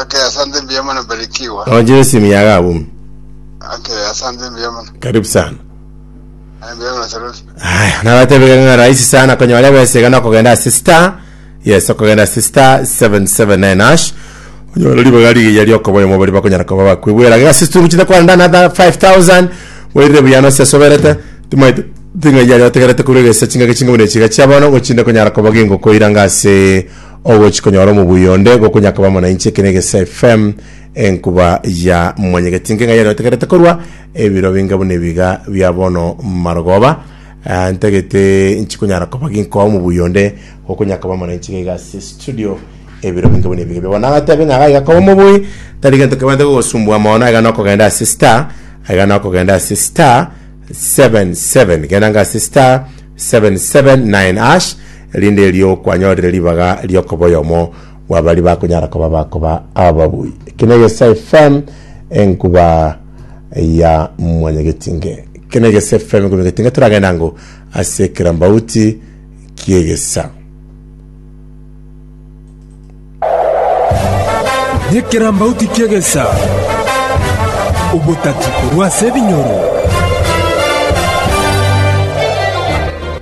Ake asante mbuya mono barikiwa. Oje simu ya gabumi. Ake asante mbuya mono. Karibu sana. Aya mbuya mono Sarufi. Haya, nabatebeka ng'a rahisi sana konyora ebesega na kogenda ase star yes okogenda ase star 779 hash onyora ribaga rigiya riokoba oyomo bari bakonyara koba bakwegwera gega situngu chinde kwarenda na 5000 werire buya no sesoberete timaite ting'a yari otegerete kure gesa chingaki chinga bune chiga chiabono gochinde konyara koba gingo koiranga ase Ogochi konyora omobuya onde gokonyakaba amo nainche eke negesa FM enkuba ya mwanyegeti inke ng'ai areotegerete korwa ebiro binge buna ebiga bia bono marogoba Ah, ntagete nchikonyara koba ginkoa omobuya onde gokonyakaba amo nainche gaiga ase studio ebiro binge buna ebiga bia bono nagatebe ng'a gaiga koba omobuyi tari gento kebwate gogosumbua mono aiga nokogenda ase star aiga nokogenda ase star 77 genda nga ase star 779 erinde erio kwanyorire ribaga riokoba oyomo bwa bari bakonyara koba bakoba ababui. Eki negese FM enkuba ya mwanyagetinge. Eki negese FM enkuba mwanyagetinge turagenda ngo ase ekirambauti kiegesa. Nekerambauti ki'egesa, obotati korwa ase ebinyoro.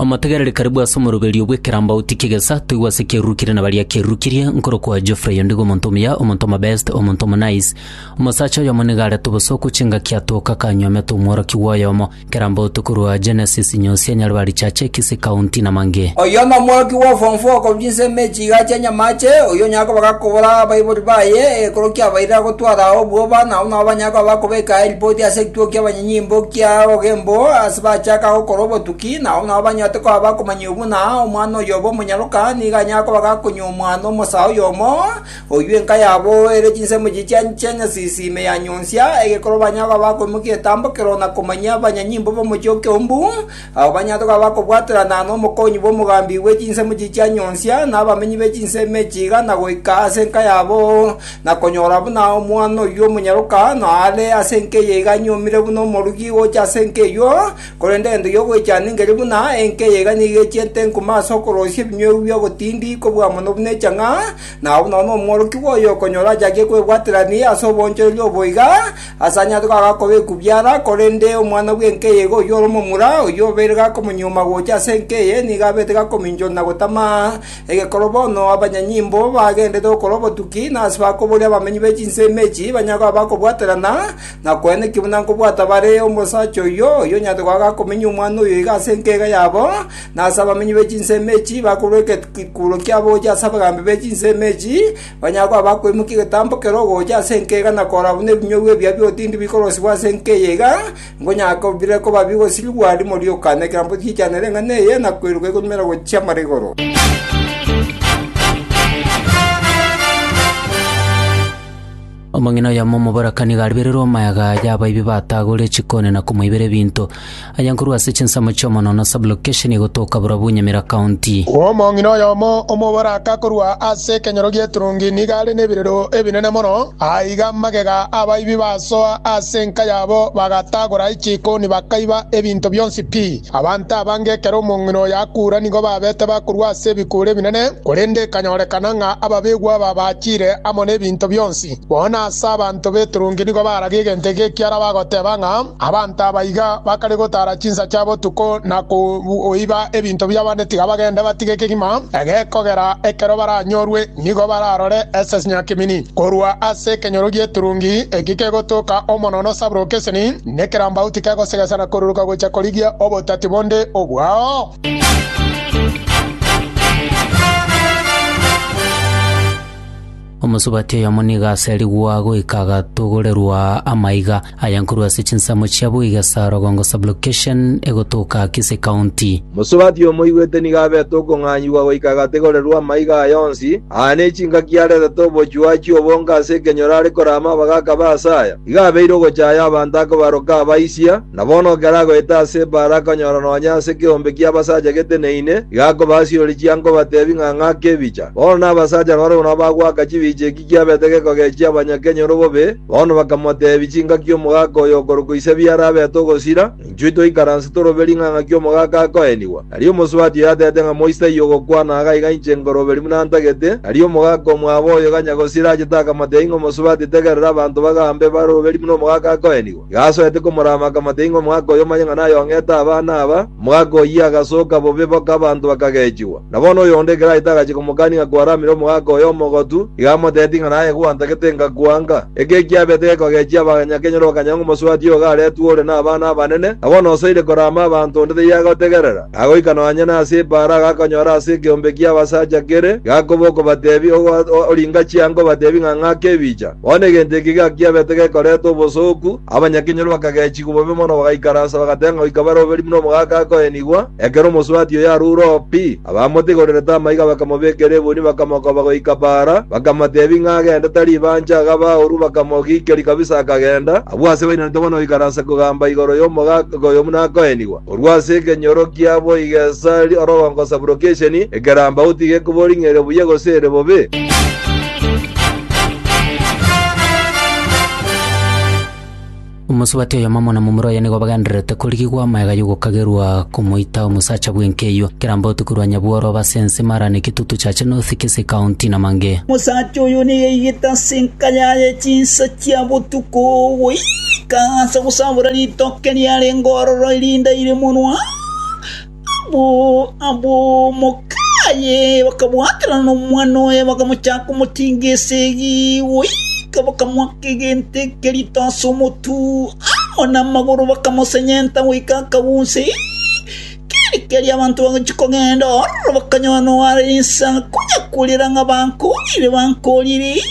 Omotegereri karibu ase omoroberio bw'ekerambauti ki'egesa, toigwa ase kiarurukirie na baria kiarurukirie, nkorokwa Geoffrey ondigo omonto omuya, omonto omobest, omonto omonice. Omosacha oyomo nigo arete obosooku chingaki atoka akanywa omete omworokia bw'oyomo. Kera mbotu korwa Genesis nyonsi enyare ba richache ekisi kaunti na mange. Oyio nomworoki bwa form four korwa chinsemo echi iga chia Nyamache, oyio onyare koba gakobora abaibori baye ekero kiabaire agotwara ao obwoba, na abwo nabo banyare koba bakobeka aye ripoti ase ekituo ki'abanyenyimbo kia Ogembo ase bachaka gokora obotuki, na abwo nabo banyorete koba bakomanya obuna omwana oyobe omonyaroka nigo anyare koba gakonywa omwana omosaa oyomo, Oyio enka yabo ere chinsemo chichia chia nyasisi ime ya nyonsia egekoro banyare koba bakoimokia etambo kero na komanyia abanyanyimbo b'omochie o Keumbu, abwo banyare koba bakobwaterana nomokonyi bw'omogambi bwe chinsemo chichia nyonsia na abamenyi be chinsemo echi iga na goika ase enka yabo, na konyora buna omwana oyio omonyaroka noare ase enka eye iga anyuomire buna omorugi gocha ase enka eyio, korende egento gi'ogoichana ngerie buna enka eye iga nigo echiete enkuma ase okorosia ebinywebu bi'ogotindi kobua mono buna echang'a, na abwo nonya omworokigwa oyo okonyora achakie kwebwaterania ase obonchoreria obo iga, asanyare koaga koba ekubiara, korende omwana bw'enkeye iga oyio ore omomura, oyio obeire gakomonyuoma gocha ase enkeye, nigo abete gakominchora na gotama egekoro bono abanyanyimbo bagenderete gokora obotuki, na ase bakoboria abamenyi be chinsemo echi banyare koba bakobwaterana, na kwenekio buna nkobwata bare omosacha oyio, oyio onyarete koaga gakomenya omwana oyo iga ase enkeye iga yabo, na ase abamenyi be chinsemo echi bakorua ekekuuro kiabo gochia ase abagambi be chinsemo echi, banyare koba bakoimokia egetambo kero ogocha ase enka eye na korora buna ebinyugwa ebia bi'otindi bikorosibwa ase enka eye iga, nkonyara bire koba bigosirigwa rimo rioka nekerambe giichanere eng'ana eye na koeruka igonyumera gochia mara igoro. Omong'ina oyomo omoborakani garibererwe omayaga aya abaibi batagorire chikoni na komoibera ebinto. Aye nkorwa ase chinsemo chi'omonoo na sublocation egotoka borobwo Nyamira County. Omong'ina oyomo omoboraka korwa ase ekenyoro gi'eturungi nigo are nebirero ebinene mono, aiga magega abaibi basoa ase enka yabo bagatagora chikoni bakaiba ebinto bionsi pi. Abanto abange ekero omong'ina oyo akura nigo babete bakorua ase ebikuura ebinene, korende ekanyorekana ng'a ababegwa aba bachire amo nebinto bionsi. Bono ase abanto b'eturungi nigo baragia egento eke ekiara bagoteba ng'a abanto aba iga bakare gotara chinsa chia botuko na koiba ebinto bi'abande tiga bagende batige kegima egekogera ekero baranyorwe Nigo bararore esesnya kimini korwa ase ekenyoro gi'eturungi eki kegotoka omonono sabroke eseni, nekerambauti kegosegesana koruruka gocha korigia obotati bonde obwao. Omosubati oyomo nigo aserigwa goika agatogorerwa amaiga, Aya nkorwa ase chinsemo chiabo iga, Sarogongo Sublocation egotoka Kisii County. Mosubati omoigwete nigo abete okong'anyigwa goika agategorerwa amaiga aya onsi, aa n'echingaki aretete obochwi achie obonge ase ekenyoro are kore amabaga akabe ase aya. Igo abeire ogochaya abanto akobaroka abaisia, na bono ekero agoeta ase ebaara akonyora nonya ase ekeombe ki'abasacha geteneine, iga akobasiroria chianga obatebi ng'a ng'ake ebicha. Bono nabasacha nabare buna bagwaka chibicha eki. Kiabete gekogechia abanyakenyoro bobe, bono bakamoteebia chingaki omogaka oyo okorokwa ise biara abete ogosira, na inchuo toikaranse torobe ring'ana ng'aki omogaka akoenigwa. Tari omosubati oyo ateete ng'a moisaia ogokwana agaa iga inche nkoroberi buna ntagete, tari omogaka omwabo oyo ganya gosira achete akamoteebia ng'a omosubati tegerera abanto bagambe baroberi buna omogaka akoenigwa. Gasoete komorama akamata ing'we omogaka oyo omanye ng'a nayong'ete abana aba. Omogaka oyio agasoka bobe boka abanto bakagechigwa. Na bono oyonde ekero aete agachia komokania ng'a kwaramire omogaka oyo omogotu, iga amoteeti ng'a naye gwantagete ngakwanka. Eke ekiabete gekogechia abanyakenyoro bakanya ng'a omosubati oyo garetwe ore nabana abanene, na bono osoire korama abanto onde taiagotegerera. Agoika nonya nase ebaara agakonyora ase ekeombe ki'abasacha kere, Yakobo okobatebia, Oringa chianga obatebie ng'a ng'ake ebicha. Bono egento eke gakiabete gekoreta obosooku, abanyakenyoro bakagechigwa bobe mono bagaikaransa bagatenga goika bare oberie buna omogaka akoenigwa, ekero omosubati oye arure oo pi. Abamotigorerete amaiga bakamobekera ebuni bakamokoba goika baara, bakamotebi ng'a agende tari ibanche agaba aoru bakamogikeria kabisa akagenda. Abwo ase bainaneto bono goikaransa kogamba igoro y'omogaka oyo buna akoenigwa. Korwa ase ekenyoro kiabo igesari oro ogokosaburo k'esheni ekerambau tigekobori ng'a ere buya gose ere bobe. Omosubati oyomo amo na momura oye nigo bagendererete korigigwa amaega y'ogokagerwa komoita omosacha bw'enkeywo. Ekerambau tikorwa nyabworo oba ase ense mara ne kitutu chache North Kisii County namange. Omosacha oyo niyaigete ase enka yaye chinsa chia botuko goika ase gosabora ritoke riarenge ororo erinde aire monwa abo abo mokaye bakabwaterana nomwana oye bakamochaka komotinga esegi goika bakamoaka egento eke rito ase omotu amo namagoro bakamosenyenta goika akagusa keri keri abanto bagochia kogenda ororo bakanyora noare ase ense konya korera ng'a bankorire bankorire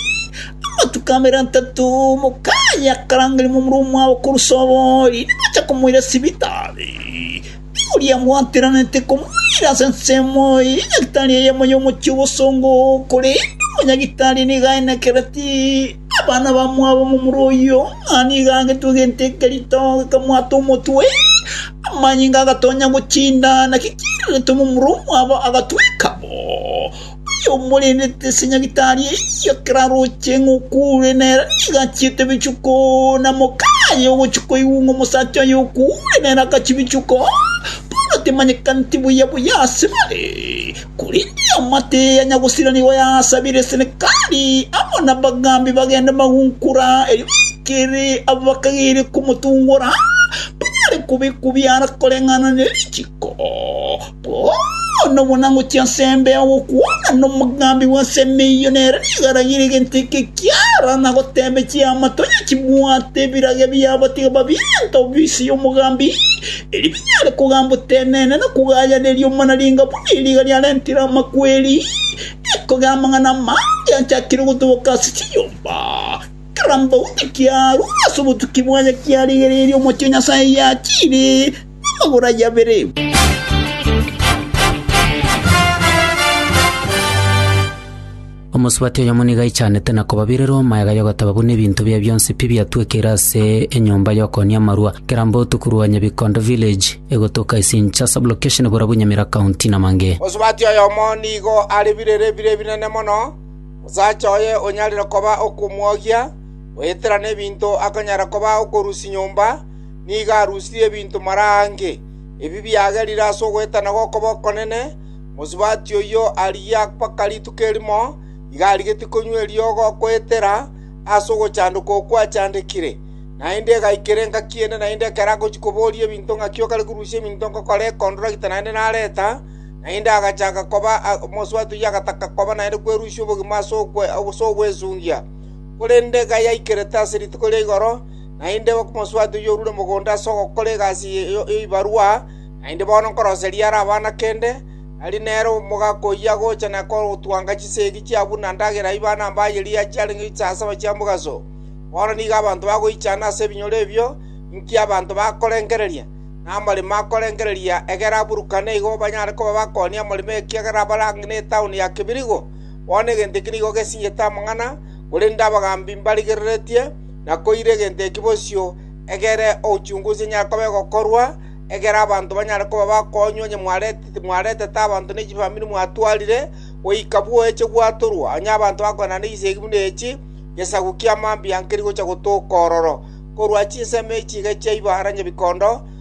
Amatuko abere atato, omokayi akarangeria momura omwabo korwa Sohori, nibacha komoira sibitari. Nigo Williamu ateranetie komoira ase ensemo eye ya nyagetari eye amo y'omochie o bosongo, korende omonyagitari nigo aenekereti. Abana bamwabo momura oyio ng'a nigo agetwe egento eke rito, akamwata omotwe, amanyinga agatonya gochinda, naki kiiraretwe momura omwabo agatweka bo. Oyomorendete ase nyagitari eyio ekero aroche ng'a okuure nere, nigo achiete ebichuko, na mokani aye ogochia koigwa ng'a omosacha oye okuure nere agachia ebichuko. Paulo timanyekaneti buya buya ase bare, korende eamate eye yanyagosira nigo yaasabire Senekali amo nabagambi bagende magunkora, erio baikere abo bakageire komotungora, banyare kobekwa biara koreng'ana ne richiko. Bono buna ngochia ase embeo gokwana nomogambi bw'ensemo eyio, nere nigo aragire egento eke kiara na goteebia chiama, Tonya chibwate ebirage biabo, tiga babiente ofisi y'omogambi, erio binyare kogamba otenene na kogayaneria omonaringa buna eriga riarentire amakweri, ekogera amang'ana amange achakire gotoboka ase chinyomba. Kera mbao nekiarure ase obotuki bwaye kiarigereirie omochie o Nyasae yachiire. Agora yabere. Omosubati oyomo nigo aichanete na kobabirera omoeega y'ogoteba buna ebinto bia bionsi pi biatwekeire ase enyomba y'okoonia amarwa, Kirambo otuku rwa Nyabikondo village, egotoka Isincha sublocation Burabu Nyamira county Namange. Mosubati oyomo nigo are birere bire ebinene mono, omosacha oye onyarire koba okomwogia, goetera nebinto akonyara koba okorusia nyomba, nigo arusirie ebinto marange, ebi biagerire ase ogoetana gw'okoba okonene, mosubati oyio arigia mpaka rituko erimo iga arigetie konywa eriogo goetera ase ogochandoka okwo achandekire. Naende egaikera engaki ende naende ekero agochia koboria ebinto ng'aki okare korusia ebinto ngokora ekondora gita naende nareta, naende agachaka koba mosubati oyio agataka koba naende kwerusia obogima ase ogwesungia. Korende gayaikerete ase rituko ria igoro, Naende omosubati oyio orure mogondo ase ogokora egasi y'ebibarwa, naende bono nkoroseria are abana kende, ari nere omogaka oyio agocha na kotwanga chisegi chia buna ndagera ibana mbaye riaye chiarenge chisasaba chi'omogaso. Bono nigo abanto bagoichana ase ebinyoro ebio, inki abanto bakorengereria, na amaremo akorengereria, egera aburukane igo banyare koba bakoonia amaremo ekiagera abare ang'e netauni ya kebirigo. Bono egento eki nigo gesinyete amang'ana, korende abagambi mbarigereretie. Na koire egento eki bosio egere ochunguzi enyare koba egokorwa, egere abanto banyare koba bakoonywa onye mwaretete abanto ne chifamiri mwatwarire, goika bwoeche gwatorwa, onye abanto bakoenda negisegi buna echi, gesaku kia mambia nkeri gocha gotoka ororo, korwa chinsemo echi iga chiaiba aranyebikondo,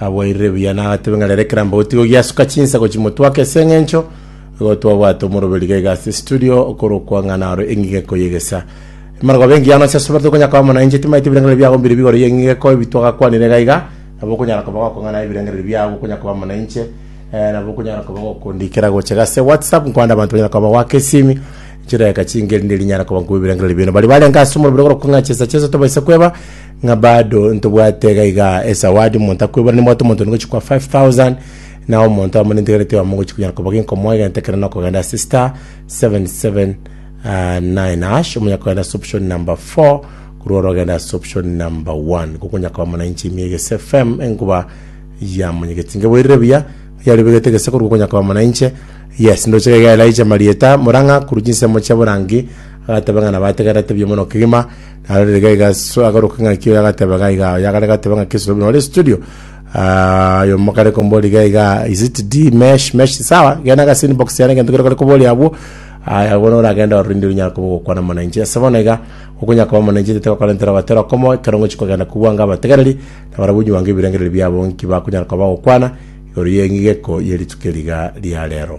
Aboirire buya nagatebe ng'a rero ekerambe gotiga ogiasuka chinsago chimotwake ase engencho igo twabwate omoroberi iga iga ase studio okorokwa ng'a naro eng'igeko y'egesa. Emarogobia engiya nonya chiasubete okonya koba mono nainche timaete ebirengererio biago mbire bigoro y'eng'igeko ebi twagakwanire iga iga nabo okonyara koba gokong'ana ebirengererio biago okonya koba mono nainche eh, nabo okonyara koba gokondikera gocha iga ase whatsapp nkwande abanto banyara koba bagoaka esimi chidageka chinke erinde rinyare koba nkobua ebirengererio bino bari barenge ase omoroberi okorokwa ng'a chesa chesa tobaisa kweba ng'a bado ntobwate iga iga esawadi, omonto akoiborane nabwate omonto onde gochia koa 5000 na omonto amo nintegerete oamo gochia konyara koba genkomo egento ekero nokogenda ase star 779 hash omonyara kogenda ase option number 4 korwa ore ogenda ase option number 1 nigo okonyara koba buna inche ime egese fm enkuba ya monyegeti ngeboirire buya yarobegete gese korwa okonyara koba buna inche yes ndoche iga iga Elijah marieta murang'a korwa chinsemo chia borangi agateba ng'a nabategererete buya mono kegima Narorire gaiga ase agaruka ng'aki oyo agateba gaiga oyo agare gateba ng'aki ase obuno ore studio Ah, oyo mokare kombori gaiga is it d mesh mesh sawa gena gase inbox yana gento kero kare kobori abwo aya bono oragenda orinde runyara kobo gokwana mwananchi ase bono iga okonya koba mwananchi tete bakorentera batera komo ekero ngochi kogenda kobwanga abategereri na barabwo onye bwango ebirengereri biabo nki bakunyara koba gokwana igoro ye ng'igeko ye rituko riga ria rero